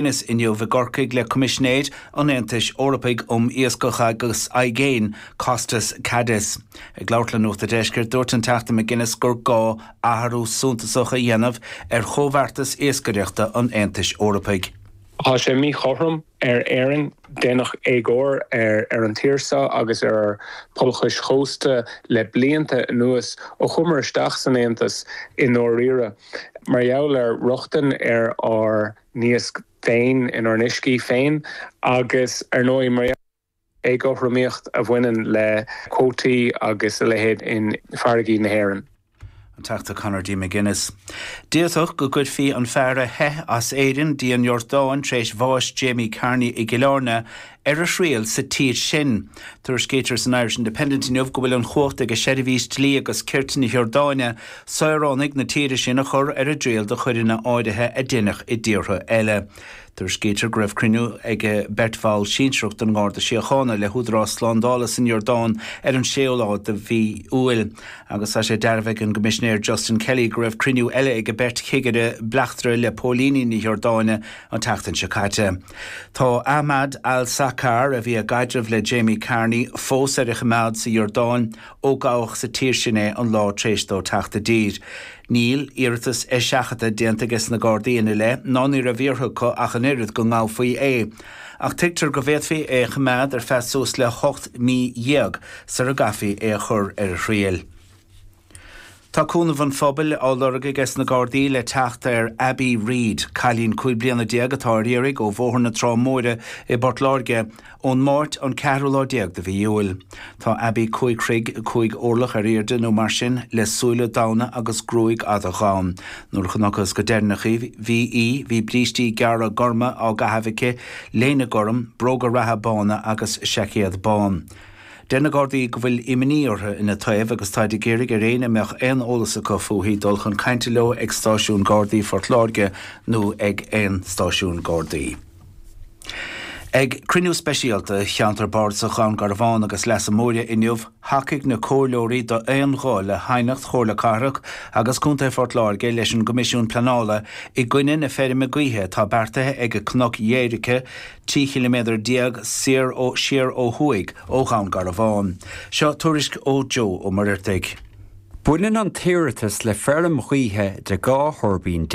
inniu i gCorcaigh le Coimisinéir an Aontais Eorpaigh um Iascach agus Aigéin, Costas Kadis. Ag labhairt le Nuacht an Deiscirt, dúirt an Teachta McGuinness gur gá athrú suntasach a dhéanamh ar chomhbheartas iascaireachta an Aontais Eorpaigh. Tá sé míchothrom ar Éirinn, déanadh éagóir ar an tír seo agus ar ár pobail chois chósta le blianta anuas, ó chuamar isteach san Aontas i ndáiríre, mar gheall ar rochtain ar ár. n-iasc féin, inár n-uiscí féin, agus ar ndóigh mar gheall ar an éagothromaíocht a bhaineann le cuótaí agus a leithéid in farraigí na hÉireann. An Teachta Conor D. McGuinness, D'fhéadfadh sé go gcuirfí an fear a theith as Éirinn dtí an Iordáin tar éis bhás Jamie Carney i gCill Airne ar a thriail sa tír sin. Tuairiscítear san Irish Independent inniu go bhfuil an chumhacht ag seirbhís dlí agus cirt na hIordáine saoránaigh na tíre sin a chur ar a dtriail do choireanna áirithe a deineadh i dtíortha eile. Tuairiscítear go raibh cruinniú ag beirt bhall sinsearach den nGarda Síochána le húdaráis slándála san Iordáin ar an séú lá de mhí Iúil agus tá sé dearbhaithe ag an gCoimisinéir Justin Kelly go raibh cruinniú eile ag beirt chigire bleachtaire le póilíní na hIordáine an tseachtain seo caite. Tá Ahmad al-Saqar, a bhí i gcaidreamh le Jamie Carney, fós ar a choimeád sa Iordáin ó gabhadh sa tír sin é an lá tar éis dó teacht i dtír. Níl iarratas eiseachadta déanta ages na Gardaí ina leith ná ní raibh iarrtha acu ach an oiread go ngabhfaí é, ach tuigtear go bhféadfaí é a choimeád ar feadh suas le hocht mí dhéag sar a gcaithfí é a chur ar a thriail. Tá cúnamh an phobail á lorg ages na Gardaí le teacht ar Abbie Reid, cailín cúig bliana déag atá ar iarraidh ó Bhóthar na Trá Móire i bPort Láirge, ón Máirt an ceathrú lá déag de mhí Iúil. Tá Abbie cúig throigh, cúig orlach ar aoirde nó mar sin, le súile donna agus gruaig fhada dhonn. Nuair a chonacthas go deireanach í, bhí í, bhí brístí gearra gorma á gcaitheamh aici, léine gorm, bróga reatha bána agus seaicéad bán. Deir na Gardaí go bhfuil imní orthu ina taobh agus táid ag iarraidh ar éinne a mbeadh aon eolas acu fúithi dul chun cainte leo ag Stáisiún Gardaí Phort Láirge nó ag aon stáisiún Gardaí. Ag cruinniú speisialta Cheantar Bardasach Dhún Garbhán agus Leasa Móire inniu, thacaigh na comhairleoirí d'aon ghuth le haighneacht Chomhairle Cathrach agus Contae Phort Láirge leis an gCoimisiún Pleanála i gcoinne na feirme gaoithe atá beartaithe ag Cnoc Dhoighearca 13 chiliméadar soir siar ó thuaidh ó Dhún Garbhán. Seo tuairisc ó Joe Ó Muirheartaigh. Baineann an t-iarratas le feirm ghaoithe de 12 thuirbín,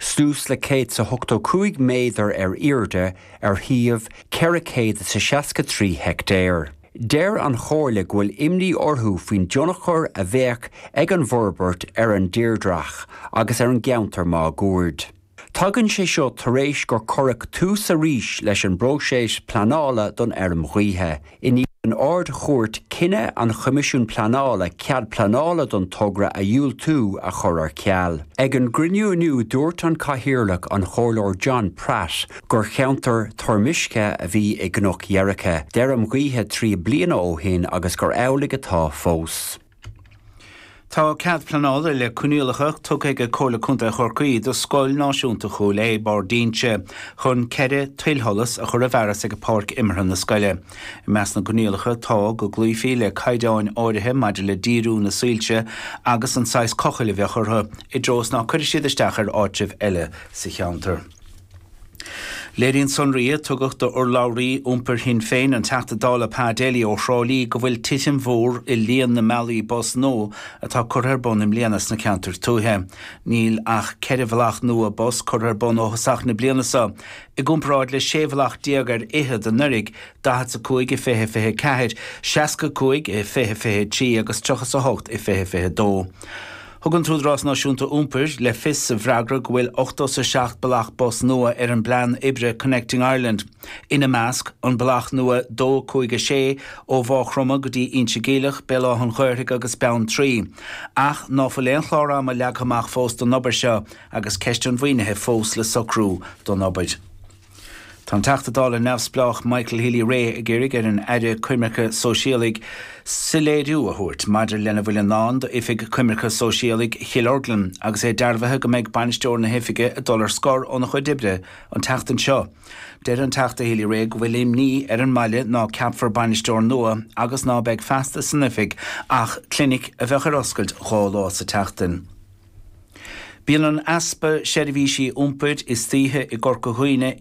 suas le céad is a hochtó cúig méadar ar airde ar shuíomh ceithre céad is a seasca trí heictéar. Deir an Chomhairle go bhfuil imní orthu faoin dtionchar a bheadh ag an bhforbairt ar an dtírdhreach agus ar an gceantar máguaird. Tagann sé seo tar éis gur cuireadh tús arís leis an bpróiseas pleanála don fheirm ghaoithe. I ndiaidh don Ard-Chúirt cinneadh an Choimisiúin Pleanála cead pleanála don togra a dhiúltú a chur ar ceal. Ag an gcruinniú inniu dúirt an Cathaoirleach, an Comhairleoir John Pratt, gur cheantar toirmiscthe a bhí i gCnoc Dheirgthe d'fheirm ghaoithe trí bliana ó shin agus gur amhlaidh atá fós. Tá cead pleanála le coinníollacha tugtha ag Comhairle Contae Chorcaí do Scoil Náisiúnta Chúil Aodha, Barr d'Ínse, chun ceithre tuilsholas a chur i bhfearas ag páirc imeartha na scoile. I measc na gcoinníollacha tá, go gcloífí le caighdeáin áirithe maidir le díriú na soilse agus an saghas cochaill a bheadh orthu, i dtreo is ná cuirfidh siad isteach ar áitribh eile sa cheantar. Léiríonn sonraí a tugadh d'urlabhraí iompair Shinn Féin, an Teachta Dála Pa Daly ó Thrá Lí go bhfuil titim mhór i líon na mbealaí bus nua atá curtha ar bun i mbliana sna ceantair tuaithe. Níl ach ceithre bhealach nua bus curtha ar bun ó thosach na bliana seo, i gcomparáid le sé bhealach déag ar fhichead anuraidh, daichead is a cúig i fiche fiche a ceathair, seasca is a cúig i fiche fiche a trí agus tríocha is a hocht i fiche fiche a dó. Thug an tÚdarás Náisiúnta Iompair le fios sa bhfreagra go bhfuil ochtó 's a seacht bealach bus nua ar an bplean oibre Connecting Ireland, ina measc, an bealach nua 2, 5, 6 ó Mhá Chromtha go dtí Inse Geimhleach, Béal Átha'n Ghaorthaidh agus Beanntraí. Ach ná fuil aon chlár ama leagtha amach fós don obair seo, agus ceist an mhaoinithe fós le socrú don obair. Tá an Teachta Dála neamhspleách Michael Healy-Rae ag iarraidh ar an Aire Coimirce Sóisialaigh soiléiriú a thabhairt maidir lena bhfuil i ndán d'Oifig Coimirce Sóisialaigh Chill Orglan agus é dearbhaithe go mbeidh bainisteoir na hoifige ag dul ar scor óna chuid oibre an tseachtain seo. Deir an Teachta Healy-Rae go bhfuil imní ar an mbaile ná ceapfar bainisteoir nua agus ná beidh feasta san oifig ach clinic a bheadh ar oscailt dhá lá sa tseachtain. Bíonn an easpa seirbhísí iompair istoíche i gCorca Dhuibhne i.